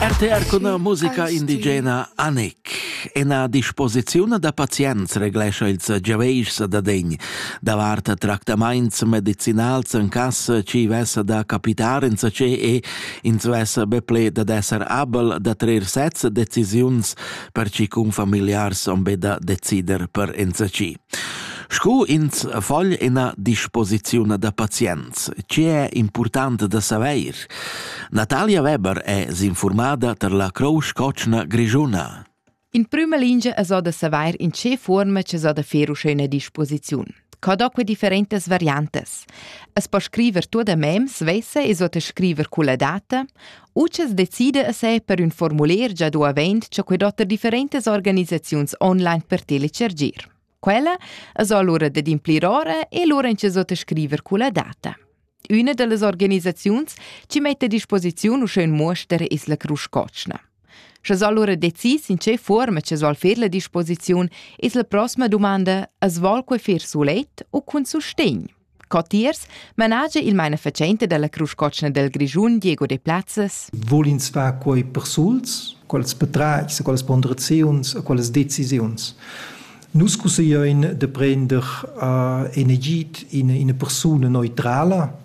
RTR cun musica indigena Anik. Ena disposiziun da pazients reglescha ils giaveischs da degn davart tractamaints medicinals en cas ci vessa da capitar insacé e ins vessa be ple da esser abel da trer sez decisiuns per ci cun familiars on be da decider per ensaci. Sco ins vogl ina disposiziun da pazients, tgi è impurtant da saveir? Natalia Weber è s'infurmada tar la Crousch Cotschna Grischuna. In prüma lingia es o da savair in che fuorma es o da fer uschè üna disposiziun. Co do que differentas variantas? Es po scriver tuot a mem svessa e so te scriver culla data? Utschess decida a se per ün formuler già do avent cha quai dotta differentas organisaziuns online per telecergir. Quella es alura dad implir ora e lura inchasò da scriver culla data. Üna da las organisaziuns chi mette a disposiziun uschè ün muoster es la Crusch Cotschna. Sche allura decis in che forma che soll fer la disposiziun, es la prossima domanda, as vol quai fer sulet u cun sustegn? Co tiers managia il mainafatschenta dalla Crusch Cotschna del Grischun Diego De Plazzes. Vul ins far quei persuls, quels petrais, quelles ponderaziuns, quelles decisiuns. Nus cusseglein de prender uh, en Egid in, eine Persona neutrala.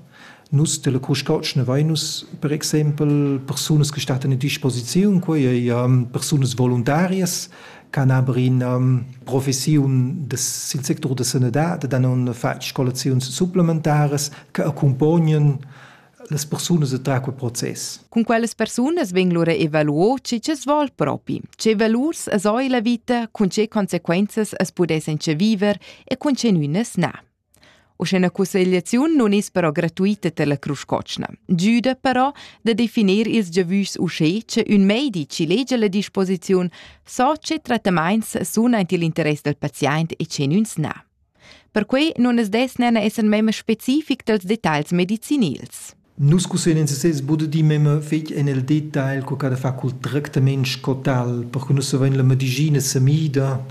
Nus della Crusch Cotschna vein nus per exempel persunas che stat a disposiziun, quei ei um, persunas voluntarias Canabrin professiun sil sectur da sanadad dan on fatg scolaziuns supplementaras che accompognan las persunas entrar quel process. Cun quellas persunas vegn lura evaluo chi chi's vol propi, che valurs es oi la vita, cun che conseguenzas as pudessan che viver e cun che nünas na. Uschè ina cussegliaziun nun es però gratuita per la Crusch Cotschna, giüda però da definir ils giavüschs uschè cha ün meidi chi legia la disposiziun so che trattamaints sun aint i'l interess dal paziaint e che gnüns na. Perquai nun as dess nana esser memma specific dals detagls medicinils. Nus cusseglian ins sez buca di memma fetg en el detagl, co che da far cul tractament sco tal, perche nus havein la medicina semida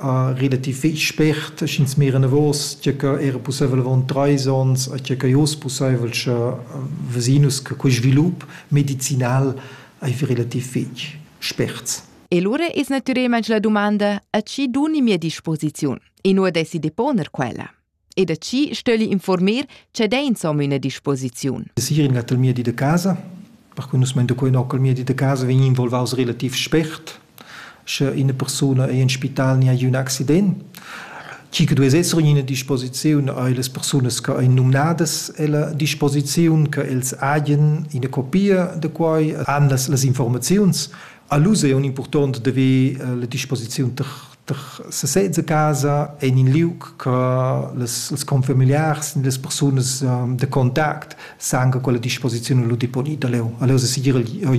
uh, relativ fetg spert, sch'ins mira enavos, tge che era pusseivel avon treis onns, a tge che oz pusseivel, sche vesinus che quei svilup medicinal ei relativ fetg spert. E lura es natürelmaing la dumanda, a chi duni mia disposiziun? E nu desi deponer quella. e da chi stögli informer che dà insomma üna disposiziun. Sir in gattel mia di de casa, perque nus meinte quei nockel mia di de casa vegn involvaus relativ spert, sche eine persona ei in spital ni ha un accident, chi che dues esser in ina disposiziun a las personas che ein nominadas ella disposiziun che els hagen ina copia de quai han las, las informaziuns. A lus è un important de ve eh, la disposiziun ter sesez a casa en in liug che les, les confamiliars e les persunas um, de contact san che quella disposizione lu deponida leu. Allora segir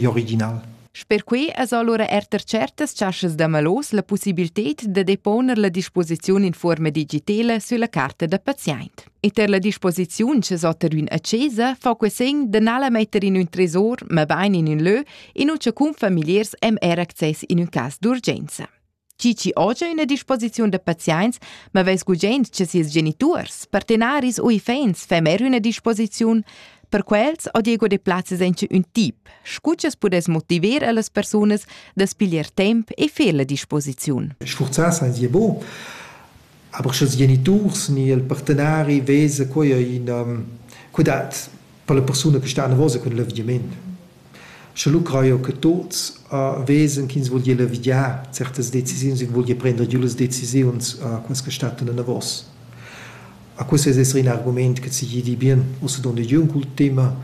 original. Sper quei es allora er ter certas chaschas da malos la possibilität da deponer la disposizione in forma digitale sulla carta da patient. E ter la disposizione che sotter un accesa fa que segn de nala metter in un tresor, ma bain in un lö, in uce cun familiars hem er access in un cas d'urgenza. Cici oja ina disposiziun da pazients, ma veis gugent che sies geniturs, partenaris u iffaints fa mer üna disposiziun. Per quels ho Diego Deplazes encha ün tip, scu ch'es pudess motiver a las persunas da's piglier temp e fer la disposiziun. Sfurzà sainza bo, aber sch'ils geniturs ni il partenari vesa quai ina, que dat per la persuna che sta anavosa cun l'avviament. Sche lu crajo che tuots vesen ch'ins vul gnir levigià certas decisiuns, ins vul gnir prender giù las decisiuns quas che stattan enavos. A questo es esser ün argumaint che seigi di bien ussa dondigiun cul tema,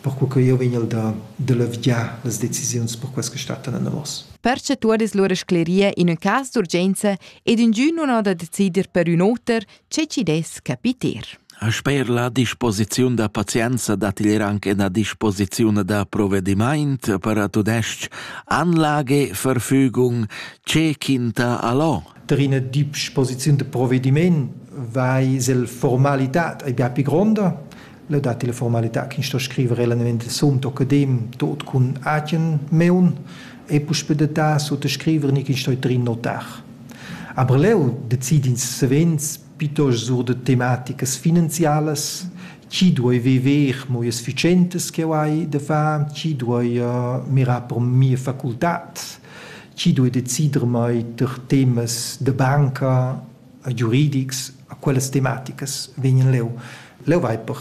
perco che jeu vegn da da levigiar las decisiuns per quas che stattan enavos. Perche tuot es lura scleria in ün cas d'urgenza ed ingün nun ho da decider per ün oter, Che chi dess capiter. Sper la disposiziun da pazienza dat igl anc ena disposiziun da provedimaint per a tudestg Anlage, Verfügung, ce quinta allo. Der ina disposiziun de provedimaint vai sel formalitad ei bia pli gronda le dat la formalità che sto scrivere eventualmente sum tokedim tot cun agen meun e puspei de ta sut scrivere ni che sto trin notar aber leu decidi ins savens pitos sur de tematicas finanzialas chi duoi viver mo sufficientes che hai de fa chi duoi uh, mirar per mia facultad chi duoi decider mai ter temas de banca giuridics a quellas tematicas vegnan leu leu vai per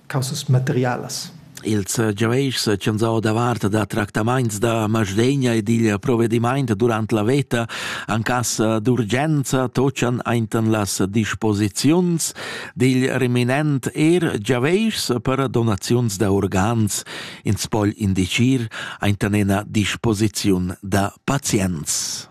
causas materialas. Ils giaveischs ch'han giau davart da tractamaints da masdegna e dil provedimaint durant la veta en cas d'urgenza tochan ainten las disposiziuns dil reminent er giaveischs per donaziuns da organs, ins pogl indicir ainten ena disposiziun da pazients.